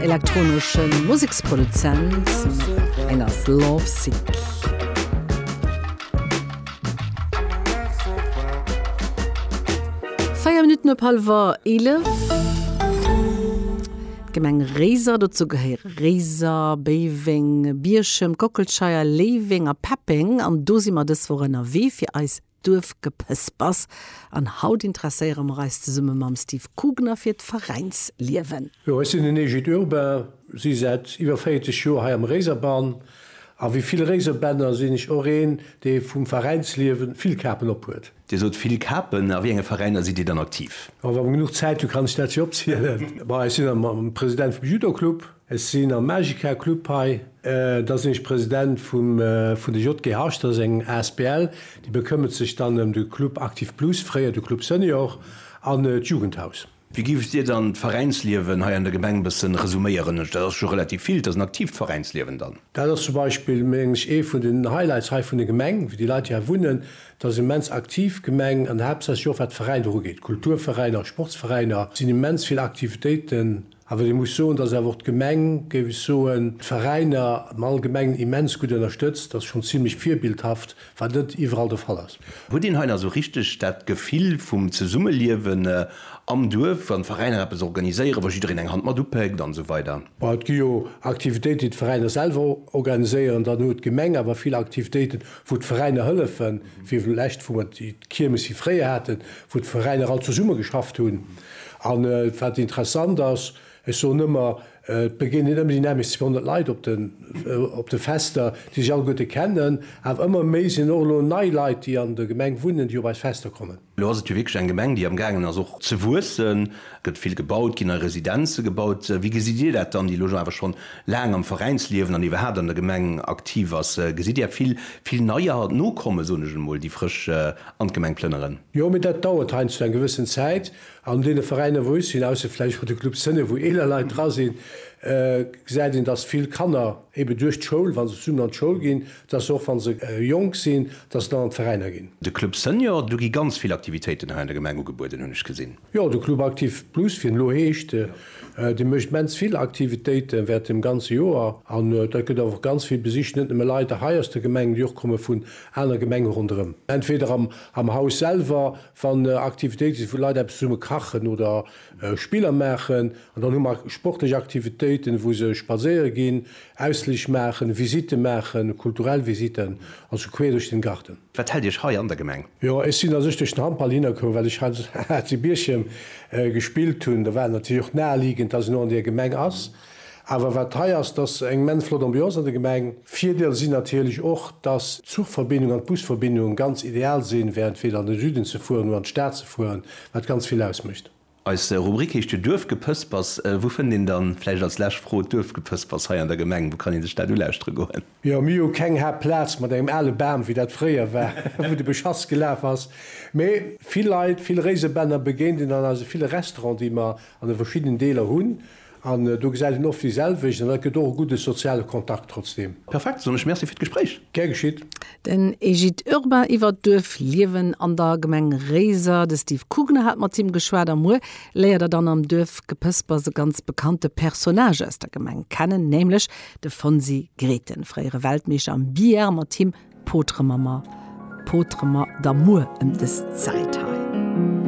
Elektronesche Museksproduzent eng ass Lovesick. Véier Minutten op hallwer 11. D'Gemeng Réiser, dozou gehéiere Réiser, Béiweng, Bierchem, Kockelscheier, Léiweng a Peppeng, an do si mer dës Woch ënnerwee fir eis Duerfgepëspers an haut interesséiere mer eis zesumme mam Steve Kugner fir d'Veräinsliewen. Jo, ech sinn den Egid Urbain, si säit iwwer 40 Joer hei am Réiserbann a wéi vill Réiserbänner sinn ech och een, dee vum Veräinsliewen vill Kapen ophuet. Dir sot vill Kapen, a wéi enge Veräiner sidd Dir dann aktiv? Wa mer genuch Zäit hunn, kann ech dat jo opzielen. Bon, ech sinn am President vum Judo-Club. Ech sinn am Magica Club hei. Da sinn ech President vum vun de JGHs. Dat ass eng asbl, déi bekëmmert sech dann ëm de Club Actif Plus, fréier de Club Senior, an d'Jugendhaus. Wéi giff Dir dann d'Veräinsliewen hei an der Gemeng bëssen resuméieren? Dat ass scho relativ vill. Dat ass en aktiivt Veräinsliewen dann. Dat ass zum Beispill, mengen ech, ee vun den Highlights hei vun der Gemeng, wéi déi Leit, déi hei wunnen. Dat ass immens aktiv Gemeng an haaptsächlech och wat Veräiner ugeet. Kulturveräiner, Sportsveräiner sinn immens vill Aktivitéiten Awer ee muss soen, dass awer och d'Gemeng, géif ech soen, d'Veräiner am Allgemengen immens gutt ënnerstëtzt. Dass schonn zimlech virbildhaft, wat net iwwerall de Fall ass. Huet een hei nach esou richteg dat Gefill vum Zesummeliewen am Duerf, wann d'Veräiner eppes organiséieren, wa jiddereen eng Hand mat upéckt an esou weider? Bon, et gi jo Aktivitéiten, déi d'Veräiner selwer organiséieren. Dann huet d'Gemeng awer vill Aktivitéiten, wou d'Veräiner hëllefen, wéi vlächtt, wou mer d'Kiermes hir fréier haten, wou d'Veräiner all zesumme geschafft hunn an wat interessant ass, ech soen ëmmer, et begéinen ëmmer déi nämlechst 200 Leit op de Fester, déi sech alleguerte kennen, awer ëmmer méi sinn och elo nei Leit, déi an der Gemeng wunnen, déi op eis Fester kommen. Elo ass et jo wierklech eng Gemeng, déi am gaangen ass och ze wuessen, et gëtt vill gebaut, ginn nei Residenze gebaut. Wéi gesitt Dir dat dann, déi elo awer scho laang am Veräinsliewen an iwwerhaapt an der Gemeng aktiv ass? Gesitt Dir vill, vill neier nokommen, soen ech emol, déi frësch an d'Gemeng plënneren. Jo, mee dat dauert heiansdo eng gewëssen Zäit. An deene Veräiner, wou ech sinn, ausser vläicht bei de Club Sënne, wou eeler Leit dra sinn, gesäit een, dass vill Kanner eebe duerch d'Schoul, wa se zesummen an d'Schoul ginn, dass se och, wa se jonk sinn, dass se dann an d'Veräiner ginn. De Club Senior, do gi ganz vill Aktivitéiten hei an der Gemeng ugebueden, hunn ech gesinn. Jo, de Club Aktiv Plus, wéi en elo heescht, dee mécht immens vill Aktivitéiten während dem ganze Joer. An dat gëtt och ganz vill besicht, net nëmme Leit hei aus der Gemeng, mee och komme vun anere Gemenge ronderëm. Entweder am Haus selwer, wann Aktivitéite sinn, wou d'Leit eppes zesumme kachen oder Spiller maachen. An dann hu mer sportlech Aktivitéiten, wou se spadséiere ginn, Ausflich maachen, Visite maachen, kulturell Visiten, also queer duerch den Garten. Wat hält Iech hei an der Gemeng? Jo, ech sinn a sech duerch den Handball hinnerkomm, well ech hei zu Bierchem gespillt hunn. Da war et natierlech och naheliegend, dass een och an där Gemeng ass. Awer wat hei ass, et ass eng immens flott Ambiance an der Gemeng. Virdeel sinn natierlech och, dass d'Zuchverbindung an d'Busverbindung ganz ideal sinn, während weder an de Süden ze fueren oder an d'Stad ze fueren, wat ganz vill ausmécht. Eis Rubrik heescht jo Duerfgepëspers. Wou fënnt een dann, vläicht als lescht Fro, d'Duerfgepëspers hei an der Gemeng? Wou kann een sech dat ulauschteren goen? Jo, mir hu keng hart Plaz mat engem ale Bam, wéi dat fréier war, wou de Beschass gelaf ass. Mee vill Leit, vill Réisebänner begéint een an eise ville Restauranten, déi mer an de verschiddenen Deeler hunn. An do gesäit een oft déi selwecht an dat gëtt och e gudde soziale Kontakt trotzdeem. Perfekt, soen ech Merci fir d'Gespréich. Gär geschitt. Den Egid Urbain iwwer d'Duerfliewen an der Gemeng Réiser. De Steve Kugner hat mat him geschwat a muer léiert der dann am Duerfgepëspers e ganz bekannte Personnage aus der Gemeng kennen, nämlech de Fonsi Grethen, fréiere Weltmeeschter am Billard. Mat him potere mer der Muer ëm des Zäit hei.